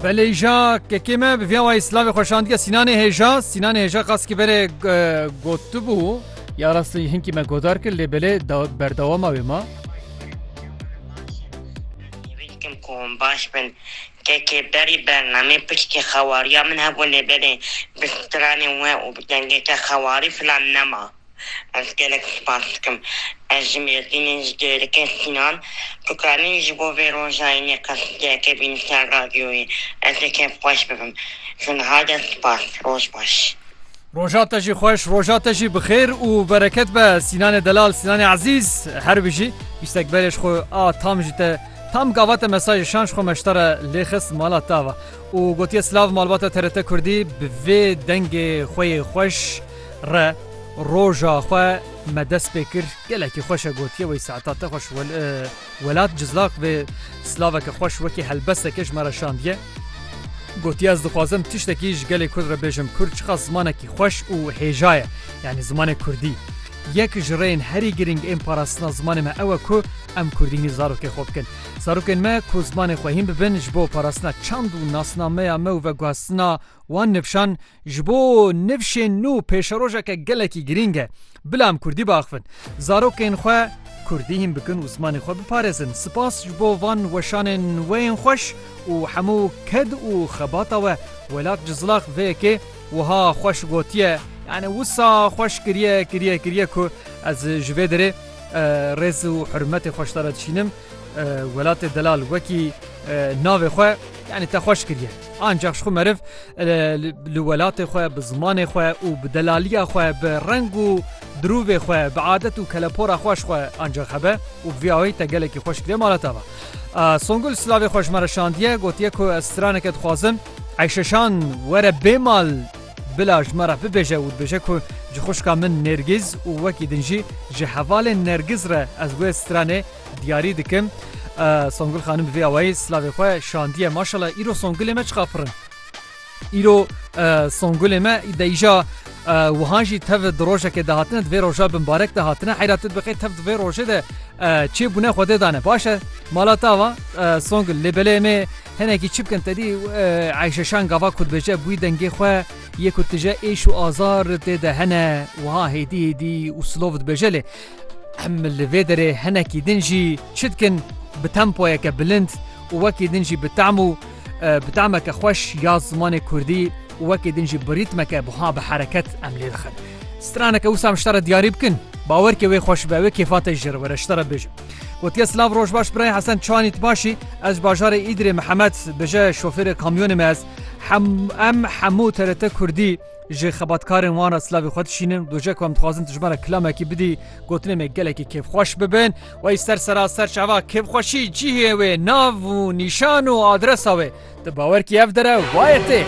Belêja kekê me bi via wayî silavê xwe şandiye Sînanê Hêja. Sînanê Hêja qas ki berê gotibû. Ya rastî hinkî me godar kir lê belê berdewama wê ma. Hêvîdikim ku hûn baş bin. Kekê berî bernameyê piştî xewariya min hebû lê belê bi stranên we û bi dengeke xewarî filan nema. Ez gelek spas dikim. Ez ji Mêrdînê ji dê dikim Sînan. Tu karî ji bo vê roja înê qesîdeyeke bînî ser radyoyê. Ez ê kêfxweş bibim. Ji niha de spas. Roj baş. Roja te jî xweş, roja te jî bi xêr û bereket be Sînanê delal, Sînanê ezîz. Her bijî. Bîstek berê ji xwe a tam jî te tam gava te mesaj şan ji xwe meştare lê xist mala te ve û gotiye silav malbata TRT Kurdî bi vê dengê xwe yê xweş. Re roja xwe me dest pê kir gelekî xweş e gotiye wey saeta te xweş welat cizlaq vê silaveke xweş wekî helbesteke ji me re şandiye gotiye ez dixwazim tiştekî ji gelê kurd re bêjim kurd çiqas zimanekî xweş û hêja ye yanî zimanê kurdî yek ji rêyên herî girîng ên parastina zimanê me ew e ku em kurdînî zarokê xwe bikin zarokên me ku zimanê xwe hîn bibin ji bo parastina çand û nasnameya me û veguhestina wan nifşan Ji bo nivşên nû pêşerojeke gelekî girîng e. Bila em kurdî biaxivin. Zarokên xwe kurdî hîn bikin û zimanê xwe biparêzin. Sipas ji bo van weşanên we yên xweş û hemû ked û xebata we. Welat Cizlax vê yekê wiha xweş gotiye, Yanî wisa xweş kiriye kiriye kiriye ku ez ji vê derê rêz û hurmetê xwe ji te re dişînim. Welatê Delal wekî navê xwe yanî te xweş kiriye. Ancax jixwe meriv li welatê xwe, bi zimanê xwe û bi delaliya xwe, bi reng û dirûvê xwe, bi adet û kelepora xwe jixwe ancax hebe û bi vî awayî te gelekî xweş kiriye mala te ve. Songul silavê xwe ji me re şandiye, gotiye ku ez straneke dixwazim Eyşeşan were bê mal bila ji me re bibêje û dibêje ku ji xwişka min Nêrgîz û wekî din jî ji hevalên Nergiz re ez wê stranê Diyarî dikim Songul xanim bi vê awayî silavê xwe şandiye maşallah îro Songulê me çiqa pirin. Îro Songulê me deyîja wihan jî tev di rojekê de hatine divê roja bi mbarek de hatine heyra tu dibixê tev divê rojê de çê bûne xwedê dane başe mala tava Songul lê belê me hinekî çi bikin tedî eyşeşan gava ku dibêje bûî dengê xwe yê ku tije êş û azar tê de hene wiha hêdî hêdî û silov dibêje lê Em li vê derê hinekî din jî çi dikin? Bi tempoyeke bilind û wekî din jî bi tam û bi tameke xweş ya zimanê kurdî û wekî din jî bi rîtmeke buha bi hereket em lê dixin. Straneke wisa em ji te re diyarî bikin, bawer ke wê xweş be, wê kêfa te jî jê re were ji te re bêjin. Gotiye silav roj baş birayê Hesen çanî tu baş î? Ez ji bajarê Îdirê Mihemed bije şofêrê kamyonê me ez. Hem em hemû TRT Kurdî. Ji xebatkarên wan re silavê xwe dişînim. Doje ku em dixwazin tu ji me re kilamekî bidî, gotinên me gelekî kêfxweş bibin. Wey ser seraser çava kêfxweşî cihê wê, nav û nîşan û adresa wê. Tu bawer kî ev dere wayê tê.